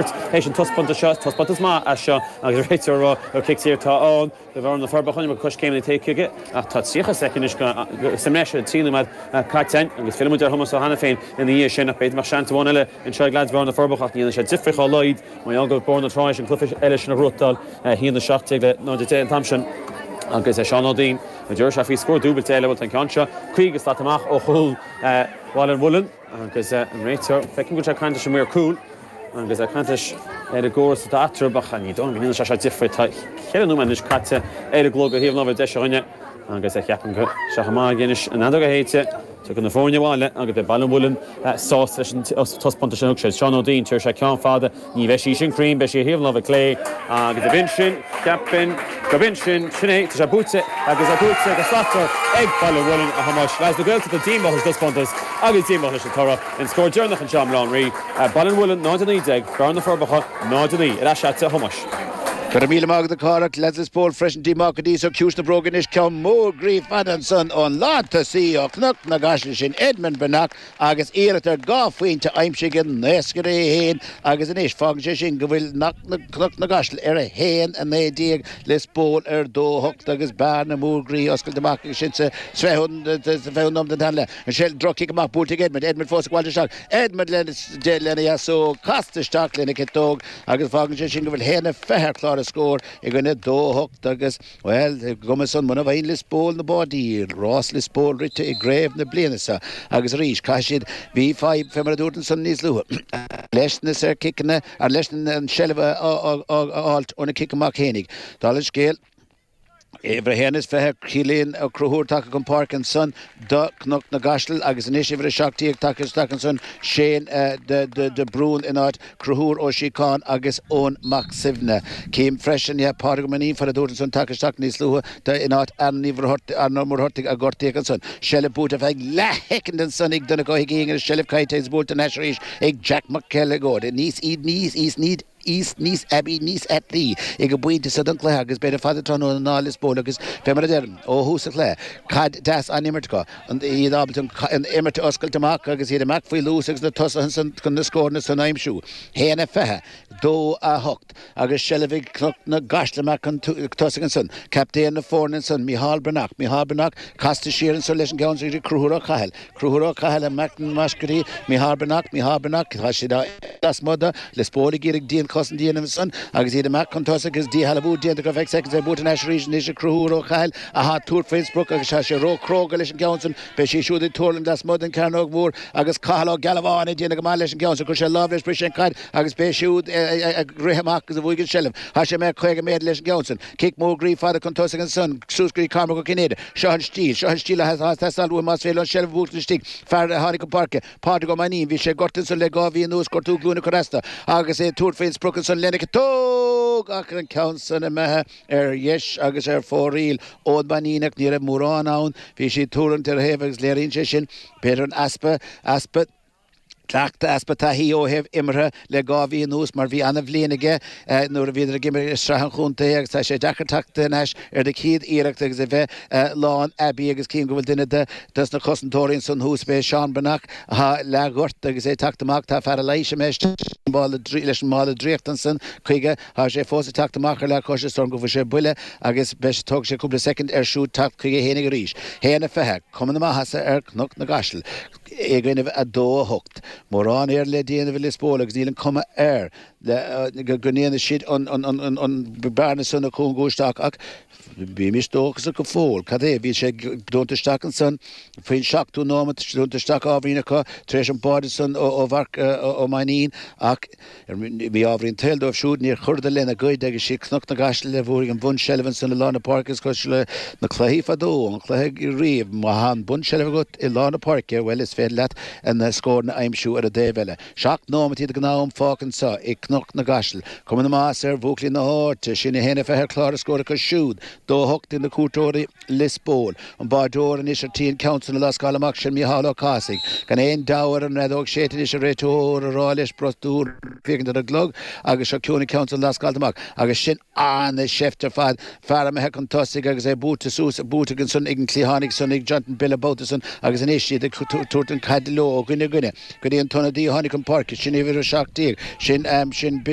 Théis an taispeántas seo, is taispeántas maith é seo agus réiteoir ag rá gur cic saor atá ann do Bhearna na Forbacha nuair coiscéimeann ag téigh chuige ach tá 30 soicind sa mbreis ar an trí nóiméad caite agus fillfimid ar Thomás Ó hAiniféin ina dhiaidh sin ach b'fhéidir mbeadh seans amháin eile anseo ag leaids Bhearna na Forbacha ach ní dhéanfaidh sé difir dá laghad mar gheall go raibh Bearna tar éis an cluiche eile sin a bhuachtáil a haon 17 le 0 10 an t-am sin agus Seán Ó Duinn a deir sé faoi scór dúbailte eile bhuel tá an ceann seo caoga slat amach ó chúl Bhaile an Mhuilinn. Agus an réiteoir, feicim go bhfuil sé ag caint leis an maor cúil agus é ag caint leis ar an gcóras atá eatarthu, ach ní dóigh liom go ndéanann sé seo difir. Tá ceithre nóiméad anois caite ar an gclog ó thaobh an ábhair deis a dhuine agus ceapaim go bhfuil sé chomh maith aige anois, an fheadóg a shéideadh, tiocfaidh na foirne abhaile agus beidh Baile an Mhuilinn sásta leis an taispeántas sin a thug siad. Seán Ó Duinn, téadh sé ceann fada. Ní bheidh sí sin cruinn, beidh sí ar thaobh an láimhe clé agus ab in sin, cheapfainn, gurb in sin, sin é, tá sé buaite agus é buaite go slachtmhar ag Baile an Mhuilinn, a Thomáis. Leads na Gaeltachta díomách leis an dtaispeántas agus díomách leis an toradh. An scór deireanach anseo i mBaile Átha an Rí, Baile an Mhuilinn 0, 19, Bearna, Na Forbacha 0, 9. Ar ais leatsa, a Thomáis. Go raibh míle maith agat, a Phádraic. Leads Lios Póil freisin díomách go dtí seo, ciumhais na bróige anois, ceann mór groí fada ansan ón lán tosaí ó Chnoc na gCaiseal, sin Edmund Breathnach. Agus iarracht ar dhá phointe a aimsigh an naoscaire é féin agus anois fágann sé sin go bhfuil Cnoc na gCaiseal ar 1-19, Liospóil ar 2-8 agus bearna mór groí oscailte amach acu sin sa 20ú nóiméad den tarna leath. Ansin drochchic amach buailte ag Edmond, Edmond fós ag fáilt isteach, Edmond lena dheasóg casta isteach lena chiotóg agus fágann sé sin go bhfuil 1-20 ar chlár an scóir i gcoinne 2-8 agus Bhuel, ar an gcuma san, muna bhfaigheann Liospóil na báidí, rás Liospóil rite i gcraobh na bliana seo agus arís, caithfidh siad, bhí fadhb, fé mar a dúirt ansan níos luaithe, leis na saorchiceanna, or leis an seilbh a fháilt ó na cic amach fhéinig. Dála an scéil, uimhir a haon is fiche, Cillian Ó Crothúir tagtha chun páirce ansan do Cnoc na gCaiseal agus anois uimhir a seacht déag tagtha isteach ansan, Shane de Brún in áit. Cruthúr Ó Síocháin agus Eoin Mac Suibhne. Chím freisin ie Pádraig Ó Mainnín, fé mar a dúirt ansan tagtha isteach níos luaithe de in áit Éanna Uí Mhuircheartaigh, Éanna Mhuircheartaigh a gortaíodh ansan. Seilbh buaite ar feadh leathshoicind ansan ag Donncha Ó hUiginn agus seilbh caillte agus buailte thar n-ais arís ag Jack Mac Uileagóid. Níos iad níos iad níos iad níos aibí níos aibí ag an bpointe so den cluiche agus b'fhéidir fada tráthnóna ná Lios Póil agus fé mar a deirim ó thús an chluiche caid deas á imirt acu iad ábalta an imirt a oscailt amach agus iad amach faoi luas agus na tosaithe chun na scóranna san a aimsiú. 1-20, 2-8 agus seilbh ag Cnoc na gCaiseal amach chun tosaigh ansan. Captaen na foirne ansan, Micheál Breathnach, Micheál Breathnach casta siar ansan leis an gceann sin ag Cruthúr Ó Cathail, Cruthúr Ó Cathail amach na mbascaedí, Micheál Breathnach, Micheál Breathnach tá siad á imirt lasmuigh de, Lios Póil ag iarraidh dianchosaint a dhéanamh ansan agus iad amach chun tosaigh agus díshealbhú déanta acu ar feadh soicind ach buaite thar n-ais arís anois ag Cruthúr Ó Cathail, Tá tabhairt faoin sprioc agus tá sé ró chróga leis an gceann sin. Beidh sí siúd ag tuirlingt lasmuigh den cearnóg mhór agus Cathal Ó Gealbháin ag déanamh go maith leis an gceann sin. Chuir sé lámh leis, bhris sé an caid agus b'é siúd ag rith amach agus a bhuaigh an seilbh. Tá sé imithe caoga méadar leis an gceann sin. Cic mór groí fada chun tosaigh ansan. Suas go dtí Cormac Ó Cinnéide. Seo an stíl. Seo an stíl atá ag teastáil uaim más féidir liom an seilbh a bhuacht istigh. Fear a tháinig chun páirce, Pádraig Ó Mainnín, bhí sé gortaithe ansan le dhá mhí anuas, gortú glúine chomh rasta agus é ag tabhairt faoin sprioc ansan lena chiotóg ach an ceann san imithe. Ar dheis agus ar fóraoil ón Mainíneach ní raibh mórán ann. Bhí sé ag tarraingt ar a thaobh agus léiríonn sé sin b'fhéidir an easpa, easpa cleachtaidh, easpa taithí ó thaobh imeartha le dhá mhí anuas mar bhí an-bhliain aige nuair a bhíodar ag imirt i Sraith an Chontae agus tá sé deacair teacht ar ais ar do chéad iarracht agus a bheith lán aibí agus cím go bhfuil duine de dos na cosantóirí ansan thuas b'é Seán Breathnach atá leath ghortaithe agus é teacht amach tá fear leighis imithe isteach leis an mála draíochta ansan chuige. Tá sé fós ag teacht amach ar leathchois is dóigh liom go bhfuair sé buille agus beidh tógfaidh sé cúpla soicind air siúd teacht chuige fhéinig arís. 1 a 20, cuma na maitheasa ar Cnoc na gCaiseal i gcoinnibh 2 8. Mórán Éireann le déanamh ag Lios Póil agus níl an cuma air go ndéanfaidh siad an bearna san a chúngú isteach ach Bímis dóchasach go fóill. Cad é? Bhí sé dúnta isteach ansan faoin seachtú nóimeat, dúnta isteach ábhairín acu tar éis an báide san ó Mharc Ó Mainnín ach mí-ámharaí an tsaoil dóibh siúd níor chuireadar lena gcuid agus is iad Cnoc na gCaiseal a bhuaigh an bunseilbh ansan i lár na páirce. Is cosúil le na cluichí fadó, an cluiche riamh, má thá an bunseilbh agat i lár na páirce, bhuel, is féidir leat an scór a aimsiú ar an dtaobh eile. Seacht nóimintí de ghnátham fágtha anseo i Cnoc na gCaiseal. Cuma na maitheasa ar bhuachaillí na háite sin, 1-20 ar chlár na scór acu siúd, 2-8 ag na cuairteoirí, Lios Póil. An báideoir anois ar tí an ceann san a lascáil amach sin Micheál Ó Cathasaigh. Gan aon deabhadh air, an fheadóg séidte anois ag an réiteoir á rá leis brostú ag féachaint ar an gclog agus seo chugainn an ceann san lascáilte amach agus sin An seift ar fad. Fear imithe chun tosaigh agus é buaite suas, buaite aige ansan, ag an cliathánaí ansan, ag Jonathan Bill buaite ansan, agus anois iad ag tabhairt an caide leo ó dhuine go duine. Go dtí an t-ionadaí a tháinig chun páirce, sin uimhir a seacht déag, sin, sin Billy.